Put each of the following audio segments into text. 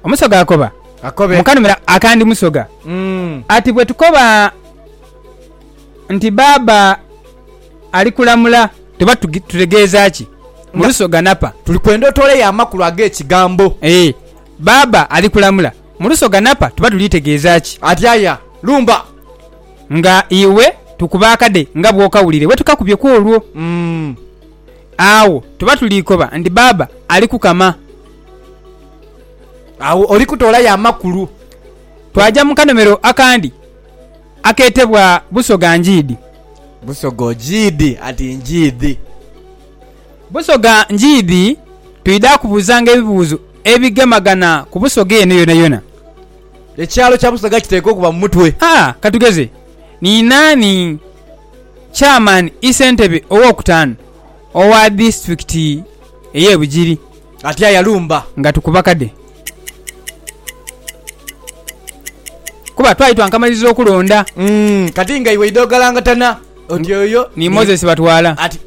Omusoga akoba Akobe. mu kanhumiro akandi musoga Mm. ati bwe tukoba nti baaba ali kulamula tuba tugi- tutegeeza ki? Mu Nga- lusoga napa. Tuli kwenda otooleyo amakulu ag'ekigambo. Ee, baaba ali kulamula. Mu lusoga napa tuba tuli tegeeza ki? Atyaya. Lumba. Nga iwe tukuba akade nga bw'okawulire bwe tukakubye kw'olwo. Mm. agho tuba tuli koba nti Bbaabba ali kukama. Agho oli kutoolayo amakulu. Twaja mu kanomero akandi akeetebwa Busoga Ngiidi. Busoga Ogiidi ati Ngiidi. Busoga Ngiidi twidha kubuuzanga ebibuuzo ebigemagana ku Busoga eno yonayona. Ekyalo kya Busoga kiteekwa okuba mu mutwe. A, Ka tugeze, Ni naani? Chairman Isentebe ow'okutaanu owa disitulikiti ey'e Bugiri. Atya yalumba. Nga tukuba kade. Kuba twali twankamaliriza okulonda. Umm kati nga iwe oidha ogalangatana oti oyo ni Moses Batwala. Ati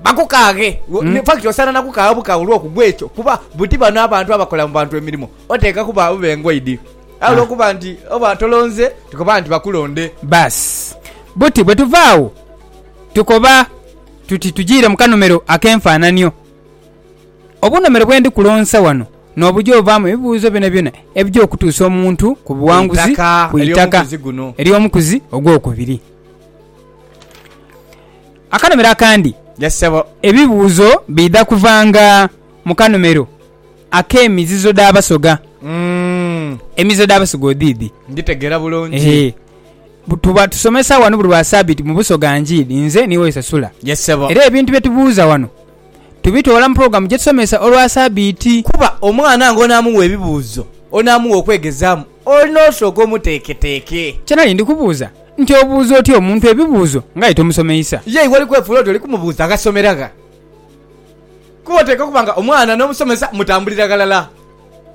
bakukaaghe. In fact osaana na kukaagha bukaagha olw'okugwa ekyo kuba buti bano abantu abakola mu bantu emirimo oteekwa kuba abe ngoidi. Aye ah. olwokuba nti oba tolonze tukoba nti bakulonde basi buti bwe tuva awo tukoba tuti tujiire mu kanomero ak'enfaananio obunomero bwendi kulonsa wano nobuja ovaamu ebibuuzo byonabyona ebija okutuusa omuntu ku buwanguzi ku itaka ery'omukuzi ogwokubiri akanomero akandi ebibuuzo biidha kuvanga mu kanomero Ak'emizizo dh'Abasoga. Emizizo dh'Abasoga odhiidhi? Ndhitegeera bulungi. Ehe. Bu- Tuba tusomesa wano buli lwa Sabiiti mu Busoga Njiiri, nze ni Woyesa Sula. Yes, ssebo. Era ebintu bye tubuuza wano tubitoola mu pulogulaamu gye tusomesa olwa Sabiiti. Kuba omwana ng'onaamuwa ebibuuzo, onaamuwa okwegezaamu, olina osooka omuteeketeeke. Kye nali ndi kubuuza nti obuuza otya omuntu ebibuuzo ng'aye tomusomeisa? Ye iwe oli kwefuula oti oli kumubuuza agasomera gha? Kuba oteekwa okuba nga omwana n'omusomesa mutambulira ghalala,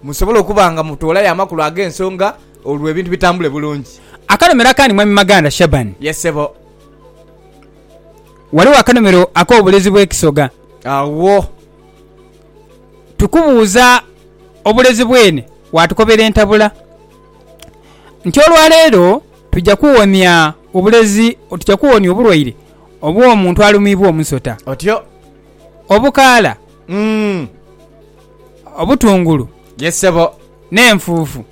musobole okuba nga mutoolayo amakulu ag'ensonga olwo ebintu bitambule bulungi. Akanomero akandi Mwami Maganda Shaban. Ye ssebo. Ghaligho akanomero ak'obulezi bw'ekisoga. Agho. Tukubuuza obulezi bwene waatukobera entabula nti olwaleero tuja kuwonia obulezi tuja kuwonia obulwaire obw'omuntu alumiibwa omusota. Otyo. obukaala, obutungulu n'enfuufu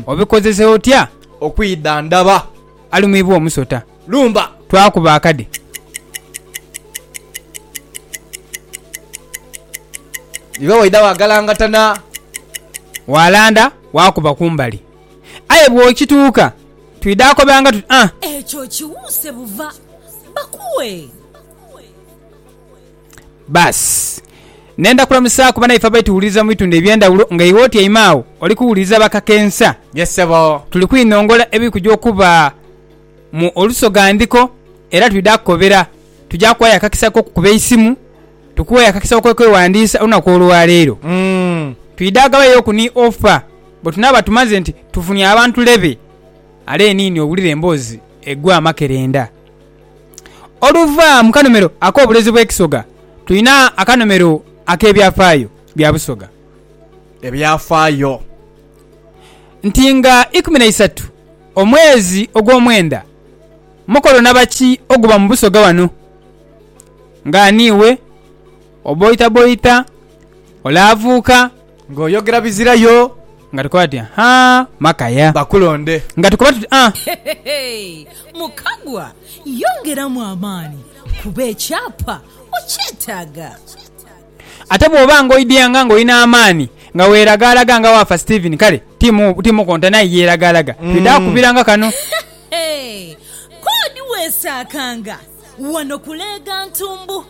obikozesa otya okwidhandhaba? Alumibwa omusota. Lumba. Twakuba akade. Iba waidha waagalangatana. Waalanda waakuba kumbali. Aye bw'okituuka twidha akobanga tuti, Ah! Ekyo kiwuuse buva. Bakuwe. Baasi. Nenda kulamusaaku banaife abali tuwuliriza mu bitundu eby'endhawulo nga iwe otyaime agho oli kuwuliriza bakakensa. Yes ssebo. Tuli kwinhongola ebiri kuja okuba mu Olusoga Ndhiko era twidha kukobera. Tuja kuwayo akakisa k'okukuba eisimu, tukuwe akakisa ak'okwewandiisa olunaku olwaleero. Umm. Twidha ghabayooku ni offer bwe tunaaba tumaze nti tufunye abantu lebe. Are niini owulire emboozi egwa amakerenda. Oluva mu kanomero ak'obulezi bw'ekisoga, tulina akanomero ak'ebyafaayo bya Busoga. Ebyafaayo nti nga ikumi na isatu omwezi ogw'omwenda, mukolo naba ki oguba mu Busoga wano? Nga ani iwe? Oboitaboita? Olaavuuka? Nga oyogera bizira yo. Nga tukoba tuti ha maka ya. Bakulonde. Nga tukoba tuti ah. Mukagwa yongeramu amaani kuba ekyapa okyetaaga. Ate bw'oba nga oidea nga nga olina amaani nga weeragaalaga nga waafa Steven kale ti mukontana aye yeeragaalaga. Twidha kukubiranga kano. K'odi weesaakanga wano kuleega ntumbu.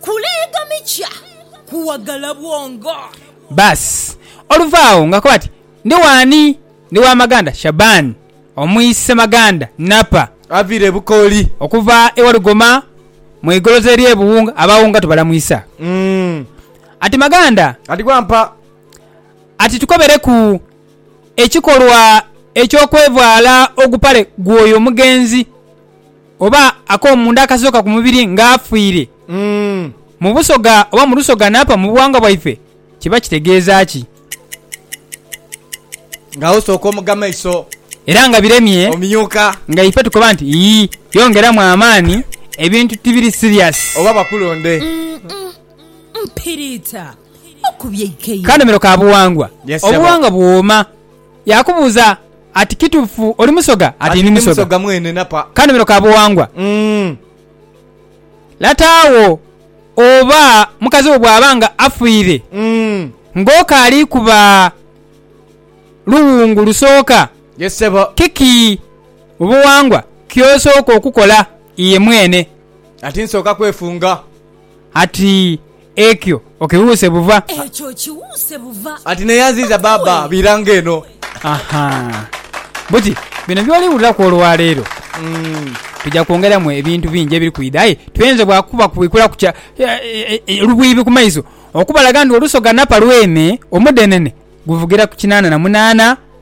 kuleegamikya kuwagala bwongo. Baas! Oluva agho ng'akoba ati, Ndi w'ani? Ndi wa Maganda Shaban, omwi Ssemaganda Napa. Avire Bukooli. Okuva e Walugoma mu igoloza ery'e Buwunga. Abawunga tubalamwisa. Ati, Maganda. Ati, Wampa. Ati, Tukobereku ekikolwa eky'okwevaala ogupale gw'oyo omugenzi. oba akomunda akasooka ku mubiri nga afiire mu busoga oba mu lusoga n'afa mu buwangwa bwaife, kiba kitegeeza ki? Nga osooka omuga maiso. Era nga biremye. Omyuka. Nga ife tukoba nti, Yii, yongeramu amaani, ebintu tibiri serious. Oba bakulonde. Mpiriita, okubye eikeyo. Kanomero ka buwangwa. Obuwangwa buwooma. Yaakubuuza ati, Kituufu oli Musoga? Ati, Ndi Musoga mwene napa. Kanomero ka buwangwa. Lata wo oba mukazi wo bw'aba nga afiire ng'okaali ku ba luwungu lusooka, kiki mu buwangwa ky'osooka okukola iye mwene? Ati, Nsooka kwefunga. Ati, Ekyo okiwuuse buva. Ekyo okiwuuse buva. Ati naye aziiza baaba biira nga eno. Aha. Buti bino by'oliwuliraku olwaleero, tuja kwongeramu ebintu bingi ebiri kwidha aye tuyenze bwa kuba kubwikulaku kya lubwibi ku maiso okubalaga nti olusoga napa lwene omudhenene guvugira ku kinaana na munaana.